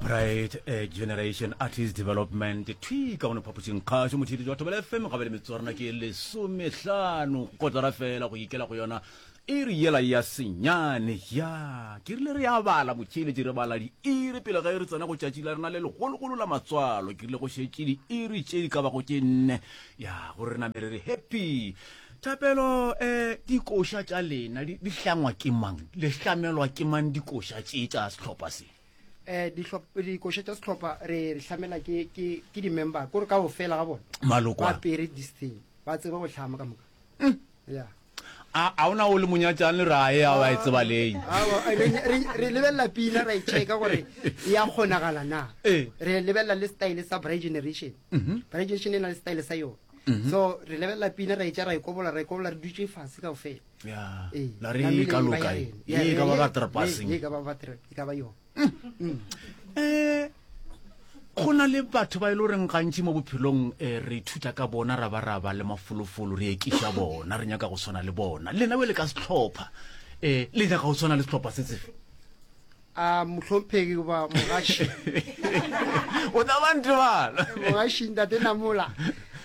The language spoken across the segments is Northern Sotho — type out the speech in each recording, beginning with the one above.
bright eh, generation artist development thwi ka gone phaposing kgaso mothedi jwa thobela fm gabe le metswarana ke lesomehlano kotara fela go ikela go yona e re yela ya senyane ya ke rile re ya bala motšheletše re bala diiri pele ga e re tsena go tšatši la rena le legologolo la matswalo ke rile go šetše diiri tše di ka bago ke nne ya gore re namele re happy Thapelo, eh, dikoša tša lena di, di hlangwa ke mang? Le hlamelwa ke mang dikoša tše tša sehlopha se? eh dihlop- dikoša tša sehlopha re re hlamela ke ke ke di-member kore ka go fela ga bona Maloko ba a. pere this thing ba tseba go hlama ka moka ya A, a ona o le monyatšang le rae a ba e tseba leng. Awa, re re- re lebelela pina ra e checka gore e ya kgonagala na Eh. re lebelela le style sa bright generation bright generation e na le style sa yone mhm. so re lebelela pina ra etša ra e kobola ra e kobola re dutse fase kao fela ee, la re e ka loka e e ka ba batrapaseng e ka ba batra e ka ba yone um go na le batho ba e le goreng gantši mo bophelong um re ithuta ka bona ra ba ra ba le mafolofolo re ekiša bona re nyaka go tshwana le bona lena be le ka setlhopha um le nyaka go tshwana le setlhopha se tsefe A mohlomphegi goba mogaši? O tla ba ntebala. Mogaši, Ntate Namola,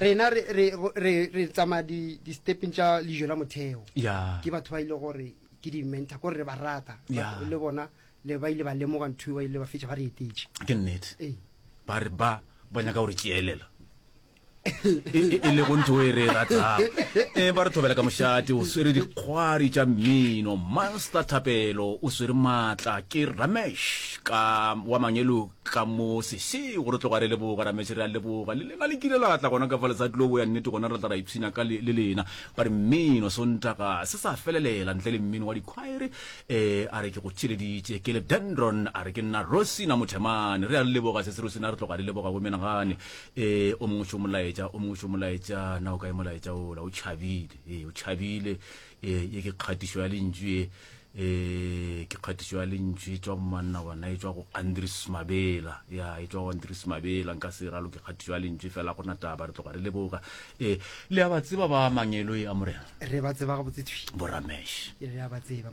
rena re, re, re, re tsamaya di, di stepeng tša lejo la motheo. Ya. Ke batho ba ile gore ke di mentor, kore re ba rata. Ya. Batho Le bona, le ba ile ba lemoga ntho e ba ile ba fetša ba re etetše. Ke nnete. Ee. Ba re ba, ba nyaka gore tšeelela. e lego ntho e re e ratang e ba re thobela ka mošate o swere dikgwari tša mmino master thapelo o swere maatla ke ramesh ka wa mangelo ka mo sese gore tloga re leboga ramesh re a leboga le lena le kile la tla gona ka fa letsatsi lobo ya nnete gona re tla ra ipshina ka le lena ba re mmino sontaga se sa felelela ntle le mmino wa dikhwaere um a re ke go theleditše ke le dendron a re ke nna rosina mothemane re a leboga sese rosina re tloga re leboga bomenagane Ee, o mongwe tšo molaetša o mongwe tšo molaetša na o kae molaetša ola o tšhabile ee o tšhabile ee ye ke kgatišo ya lentšu e ee ke kgatišo ya lentšu e tswa go manna gona e tswa go andris mabela ya e tswa go andris mabela nka se ralo ke kgatišo ya lentšu fela gona taba re tloga re le boka ee le a ba tseba ba mangelo e a morena re ba tseba ga botsetswi boramesh re a ba tseba